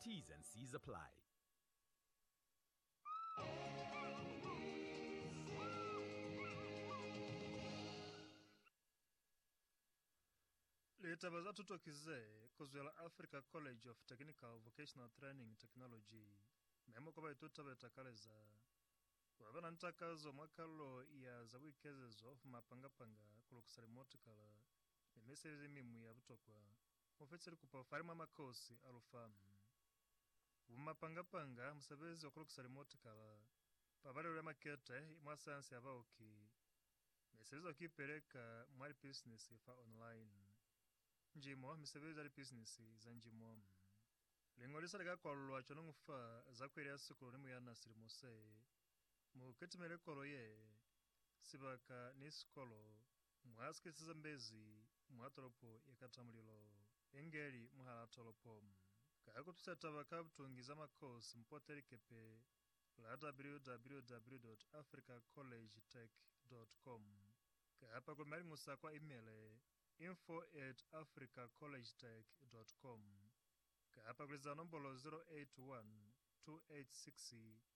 T's and C's apply. Litaba za tuto ki ze kuzwela Africa College of Technical Vocational Training Technology memo kwa baituta be takaleza ku ba ba na ni takazo mwa kalulo ya za buikezezo, mapanga-panga, ku lukisa limotikala ni misebezi mi mwi ya butokwa Mufece likupo fale mwa makosi a lufa, bumapanga-panga, musebezi wa kulukisa limotikala, pabalelo ya makete mwa sayansi ya baoki, ne sebezi ya kuipeleka mwa lipisinisi fa online, njimo, misebezi ya lipisinisi za njimo. Liñolisa li ka kwalulwa cwañi fa za kueli ya sikolo ni muyana silimo se? Mu kitimele kolo ye, sibaka, ni sikolo Mwa sikisi ze mbezi mwa tolopo ye kata mulilo, inge li mwahal'a tolopo. Ka ku tusa taba ka butungi za makosi, mpote likepe la www.africacollegetech.com kapa ku maliñusa kwa imele, info at africacollegetech.com, kapa ku liza nombolo 081 286